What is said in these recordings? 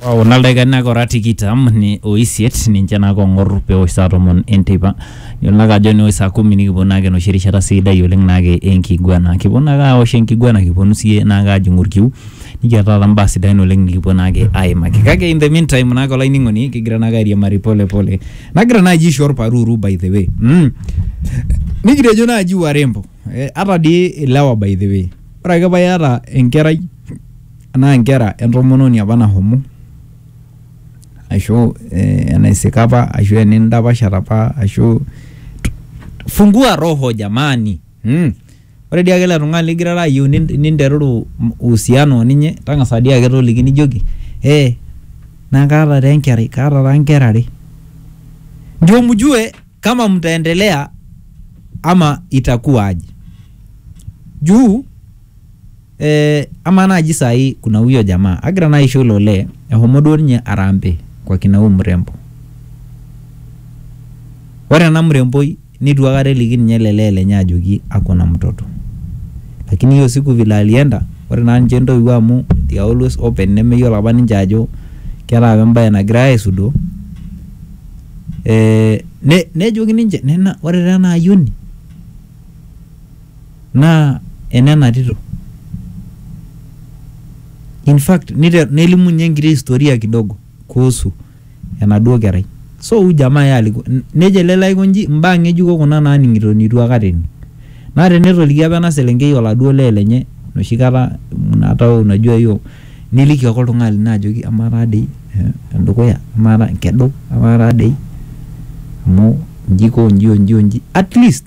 Wow, na ildakikani ora tikitam ni oisiet ninche naa kong'or peosh saa tomon enteipa yiolo naake ajo neosh saa kumi nikipuo naake enoshi rishata sidai oleng naake enkiguana kipuo naake awosh enkiguana kiponu siyie naake ajing'u orkiu nikiata taata imbaa sidain oleng nikipuo naake aimaki kake in the meantime naake olainining'oni kigira naake airiamari pole pole nagira naaji aisho orparuru by the way mm. nikitejo naaji warembo eh, ata dii ilewa by the way ore ake paa iyata enkerai Anaa nkera entomononi apa nahomo ashu enaisika apa ashu enindapashata apa ashu fungua roho jamani mm. Ore dii ake ele tung'ani ligirara ayieu ninteruru uhusiano oninye tang'asa dii ake toliki nijoki eh naa kaata taa enkerai kaata taa nkera are ndio mjue kama mtaendelea ama itakuwa aje juu Eh, ama naaji sai kuna huyo jamaa agira naa aisho ilo olee ehomo duo ninye arambe kwa kina huyu mrembo ore ena mremboi nitu akata eliki ninye ele lee lenye ajoki akona mtoto lakini hiyo siku vile alienda ore naa ninche intoiwuo amu they are always open nemeyiolo apa ninche ajo keeta apa embaye nagirae aisudoo eh, ne, nejoki ninche nena ore taa ena ayioni naa enena tito. In fact, niter, nelimu ninye enkiti historia kidogo kuhusu enaduo kerai. So huyu jamaa yeye alikuwa nejo ele lee aiko nji imbaa ng'ejuko kuna naaning'ito nitu akata ening. Naa tenetoliki apa ena selenkei oladuo lee lenye enoshi kata hata wewe unajua hiyo niliki ake oltung'ani lino ajoki amaa taa dei endukuya amaa taa nkedu amaa taa dei amu nji iko nji o nji o nji at least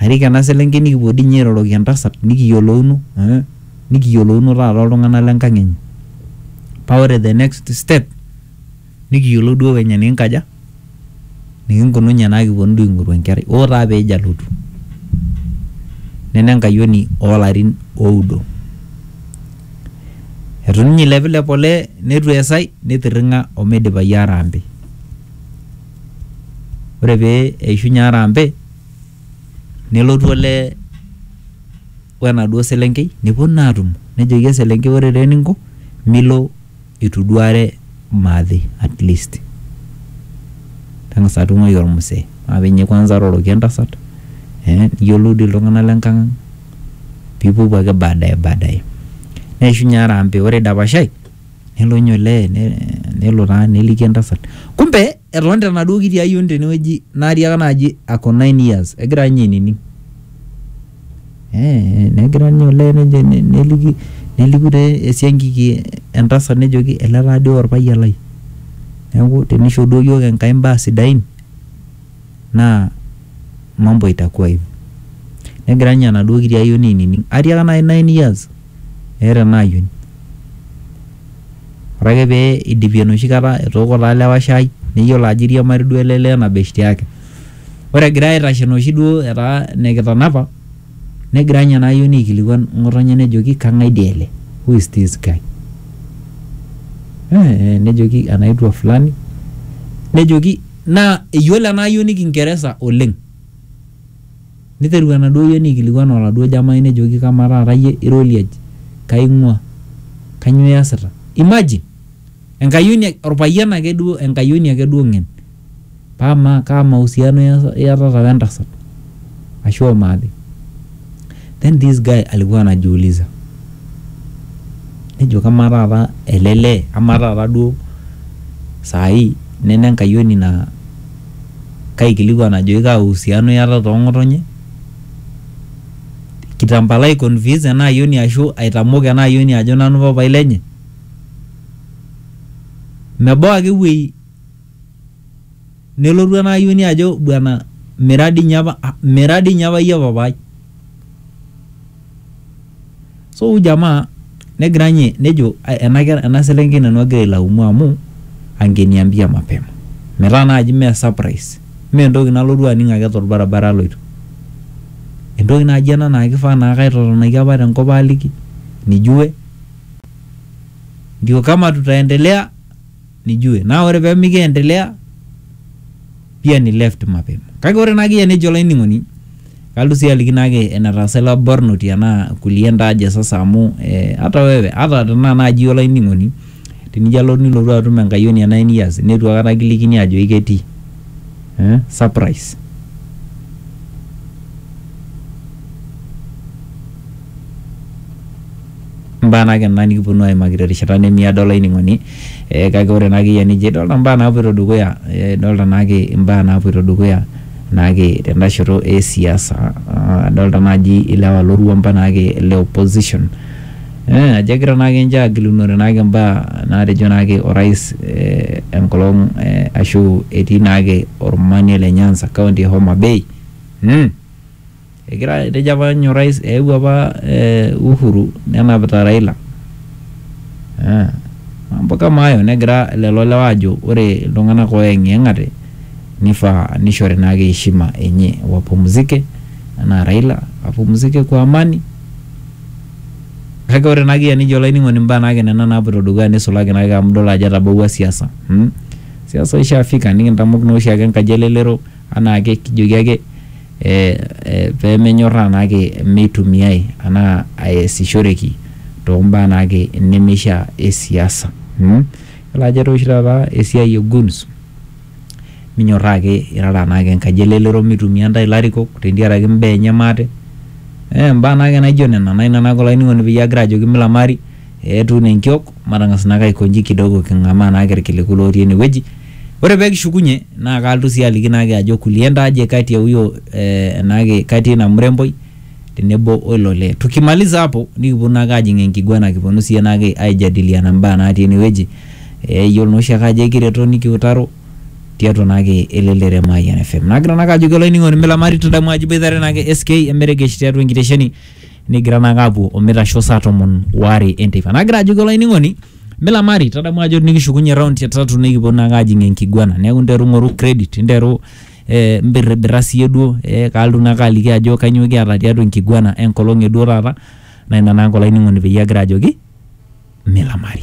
Arik ena selenkei nikipuo dii ninye airoroki entasat nikiyiolouno eh, nikiyiolouno taata oltung'anak le nkang enye. Paa ore the next step nikiyiolou duo venye nikinkaja nikinkununye naa kiponu duo aing'oru enkerai. Hoo taa pejo alotu. Nena enkayioni oo larin oudo. Eitu ninye eilepilep olee neitu eesai neitirring'a omeidipayu harambee. ore pee eishunye harambee nelotu olee o enaduo selenkei nepuo naa aatumo nejoki eselenkei ore taa eninko milo eitu iduare maate at least tang'asa atung'uai ormusee maa pi ninye kwanza iroroki entasat ee niyiolou dii iltung'anak le nkang ang piipuopuo ake baadaye baadaye neishunye harambee ore eidapashai. Nelo ninye olee nelo taa neliki entasat. Kumbe etonita enaduo kiti ayioni tenewueji natiaka naaji ako nine years egira ninye ainining. Ee negira ninye olee nejo neliki neliku taa esiankiki entasat nejoki ele taa dii orpayian lai. Neeku tenisho duo iyiook Enkai imbaa sidain naa mambo itakuwa hivyo. Negira ninye enaduo kiti ayioni ainining. Atiaka naai nine years meeta enaayioni. Ore ake pee eidipi enoshi kata etooko taa lewa shai neyiolo ajo eiriamari duo ele lee ena beshte yake. Ore egira aitashe enoshi duo etaa enikitanapa negira ninye ena ayioni aikilikuan ng'otonye nejoki kang'ae dii ele? Who is this guy? Eeh nejoki anaitwa fulani nejoki naa eyiolo ena ayioni kingeresa oleng Neiteru enaduo ayioni aikilikuan oladuo jamai nejoki kamaa taata iyie ira oliaji? Kai ing'ua? Kanyoo iasita? Imagine! Enkayioni, olpayian ake duo, enkayioni ake duo ng'en. Paa amaa kaa mahusiano iatata wentasat? Ashu o maate? Then this guy alikuwa anajiuliza nejo kamaa taata ele lee, amaa taata duo saa hii nena enkayioni naa kaikilikuan ajoki kaa uhusiano iatata oo ng'otonye, kitambala ai convince ena ayioni ashu aitamok ena ayioni ajo nanu papai lenye. Mebau ake ewuei nelotu ena ayioni ajo bwana mira dii ninye apa mira dii ninye apa iyie papaai. so huyu jamaa negira nye nejo "Ai, ena ker- ena selenkei nanu agira ailaumu amu angeniambia mapema metaa naaji mee surprise mee entoki nalotu aning ake torbaribara aloito entoki naaji ena naa kifaa naa kaitotonaki apa tenkop aliki nijue ndio kama tutaendelea nijue naa ore pee mikiendelea pia ni left mapema kake ore naake iyie nejo olainining'oni kalotu sii aliki naake enetaasa ilo barnoti anaa kulie ndaaje sasa amu eh, hata wewe hata tenaa naaji olainining'oni tenijo alo nilotu atum enkayioni e nine years netu akata kilikini ajo iketii eh, surprise mbaa naake ena nikiponu aimaki terishata nemiado olainining'oni eh, kake ore naake iyie enijo idolta mbaa naapuoito dukuya eh, idolta naake imbaa naapuoito dukuya naake tenda shoto e siasa Ah, adolta naaji ilewa lorwuampa naake le opposition eh, ajo egira naake ninche agilunore naake mbaa naatejo naake orais eh, enkolong eh, ashu etii naake ormanie le Nyanza kaunti e Homa Bay mm. Egira etejo apa ninye orais eewuo apa Uhuru nenapita Raila eh mambo kama hayo negira lelo lewa aajo ore iltung'anak ooyeng'iyeng'ate nifaa nishori naake heshima enye wapumzike enaa Raila apumzike kwa amani kake ore naake iyie enijo olainining'oni imbaa naake nena naapuoito dukuya nisulaki naake amu idol ajo etabawua siasa mm siasa ishafika nikintamok naa oshiake enkaji elelero. anaake kijoki ake pemenyorraa naake meitumiai anaa aesishoreki tombaa naake nemeishia e siasa mm. Yiolo ajo etaa oshi taata esiai e guns minyorraa ake irara naake enkaji e lelero mitumia intae ilarikok tentiaraki imbaa enye maate eh imbaa naake naijo nena naa ina naake olainining'oni peyie agira ajoki milamari etuun enkiok. Matang'as naake aiko nji kidogo king'amaa naake ilkiliku lootii ene wueji. Ore pee kishukunye naa kaalotu sii aliki naake ajo kulienda aje kati ya huyo eh, naake kati ya ina mremboi tenebo o ilo lee. Tukimaliza hapo nikiponu naake aajing enkiguana kiponu sii naake aijadiliana imbaa natii ene wueji. Eh, iyiolo naa oshiake ajo ekireto nikiutaro tiatua naake elelero e Mayian FM. Nagira naake ajoki olainining'oni milamari tadamu ajo iboitare naake SK emeregesh tiatua enkitesheni Negira naake aapuo o meitasho saa tomon oare enteipa. Nagira ajoki olainining'oni milamari tadamu ajo nikishukunye round e tatu nikipuo naake aajing enkiguana neeku nteru ing'oru credit nteru eh, imbirribirra siiyie duo eh, kaalotu naake aliki ajo kainyoo kiata tiatua enkiguana enkolong e duo taata naa ina naake olainining'oni peyie agira ajoki milamari.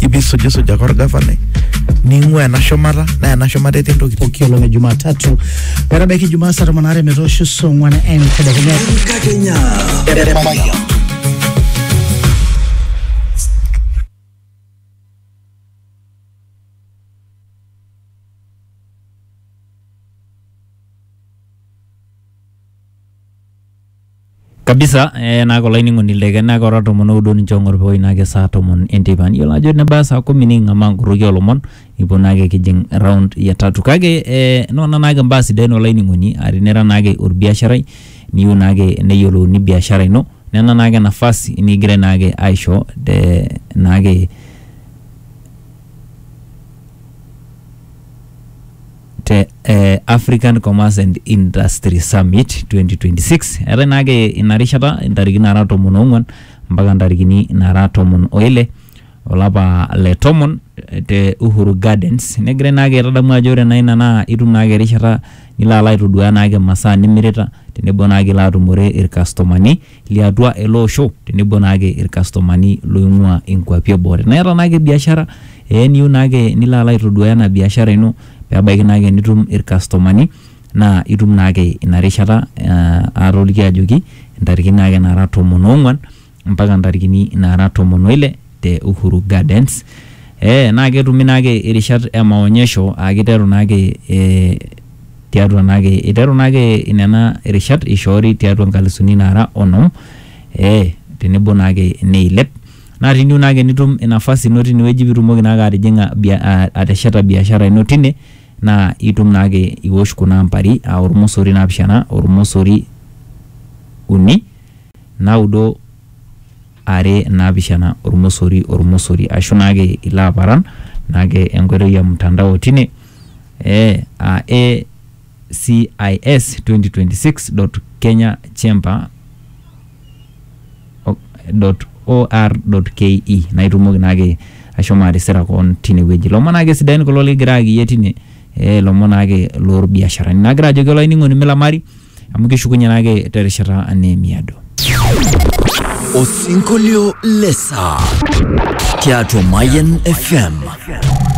ipi sujisuja kwa orgavanai ning'ua ena shumata naa ena shumata etii ntokitin pooki olong e Jumatatu metabaiki Jumaa saa tomon aare metoosho saa ong'wan entedekenya. Enkakenya. Eremaya. Kabisa eh, naa kulo ainining'oni le Kenya kora tomon oudo ninche ong'or peoi naake saa tomon enteipa. Niyiolo ajo nebaya saa kumi niking'amaa nkorroki oolomon nikipuo naake kijing' round ya tatu kake eh, nona naake mbaa sidain olainining'oni aa tinira naake olbiasharai niyiu naake neyiolouni biashara ino nena naake nafasi nikigirai naake aisho te naake te eh, African Commerce and Industry Summit 2026 eetae naake ina rishata intariki nara tomon oong'uan mpaka ntarikini nara tomon oile olapa le tomon eh, te Uhuru Gardens negirai naake aitadamu ajo ore naa ina naa itum naake erishata nilo alo aitoduaa naake masaa nimirita tenebo naake ilo atumore irkastomani liatua ele osho tenebo naake irkastomani loing'ua inkuapi eboo. Tenaa iyata naake biashara ee niyieu naake nilo alo aitoduaya ena biashara ino pebaiki naake nitum irkastomani naa itum naake ina rishata aa atoliki ajoki intarikini naake nara tomon oong'uan mpaka intarikini nara tomon oile te Uhuru Gardens. Ee naa ketumi naake irishat e maonyesho aa kiteru naake ee tiatua naake iteru naake nena rishat ishoori tiatua nkalisuni naara onom ee tenebo naake neilep. Naa tiniu naake nitum nafasi ino tine wueji piitumoki naake atijing'a bia aa atesheta biashara ino tine naa itum naake iwosh kuna ambari aa ormosori naapishana, ormosori uni, naudo. are naapishana ormosori ormosori ashu naake ilo aparan naake enkoitoi ya mtandao tine eh, aa ACIS 2026.kenyachamber .or.ke naa itumoki naake ashomo atisira koon tine wueji. Ilomon naake sidain kulo likigira ayaki iyie tine, eh ilomon naake lorbiasharani. Nagira ajoki olainining'oni milamari. amu kishukunye naake terishata neemiado. Osinkolio le saa tiatua Mayian FM.